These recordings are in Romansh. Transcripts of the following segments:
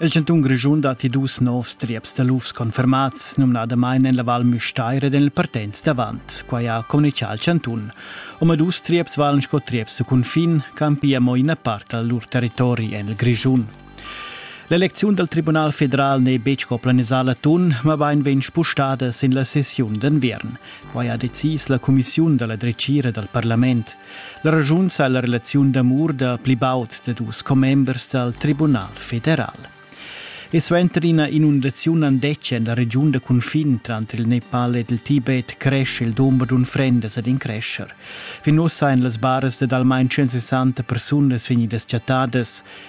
Il chantun Grischun datti dus novs trieps da lufs confermats, numnadamain en la Val Müstair ed en il Partenz d'avant. Quai ha communitgà il chantun. Omadus trieps valen sco trieps da cunfin campia mo ina part dal lur territori en il Grischun. L'elecziun dal Tribunal federal n'è betg co planisà l'atun, mabain vegn spustada sin la sessiun d'enviern. Quai ha decis la cumissiun da la dretgira dal parlament. La ragiun sa la relaziun d'amur da pli baud da dus commembers dal Tribunal federal. E suenter ina inundaziun andetgia en la regiun da cunfin tranter il Nepal ed il Tibet cresce il dumber d'unfrendas ed in crescher. Fin ussa èn las baras dad almain 160 persunas vegnidas chattadas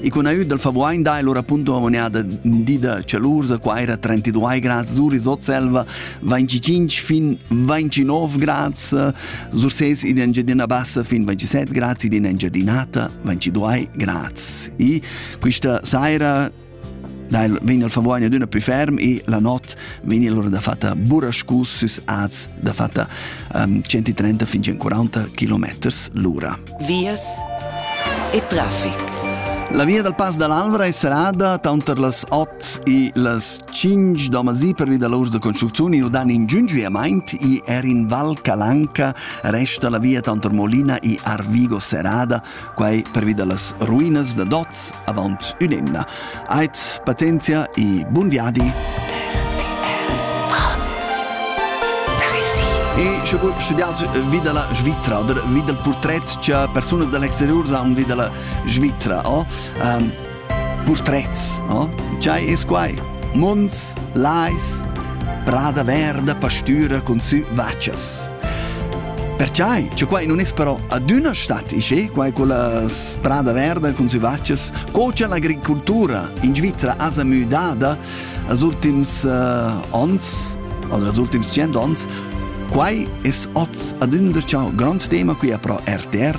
E con aiut dal Favuain dai lura appunto amoneada di da Cialursa, qua era 32 grads, Zuris Otselva, 25 fin 29 grads, Surses in Engiadina Bassa fin 27 grads, in Engiadinata 22 grads. E questa sera dal vegn il Favuagna d'una più ferm e la notte vegni allora da fatta burascus sus az da fatta um, 130 fin 140 km l'ora. vias e traffic. La via dal Pass dall'Alvra è serrada tanter las 8 e las 5 da masì pervi da l'urs da construcziun e dan in giungiuiamaint e er in Val Calanca resta la via tanter Molina e Arvigo serrada, quai pervi da las ruinas da Doz avant un'emna. Ait pazienzia e bun viadi! E sche vus studiaus vi dalla Svizra oder vi dal purtret che persunas dall'exterior han vi dalla Svizra, oh? um, portrets, oh? C'hai es quai? Mons, lais, prada verda, pastura cun sü vaccias. Perciai, che quai non es però adüna stat isché, quai con la sprada verda cun sü vaccias, co cha l'agricoltura in Svizzera asa müdada als ultims uh, ons, oder als ultims cent ons, quai es oz adüna ciao grond tema qui a pro RTR,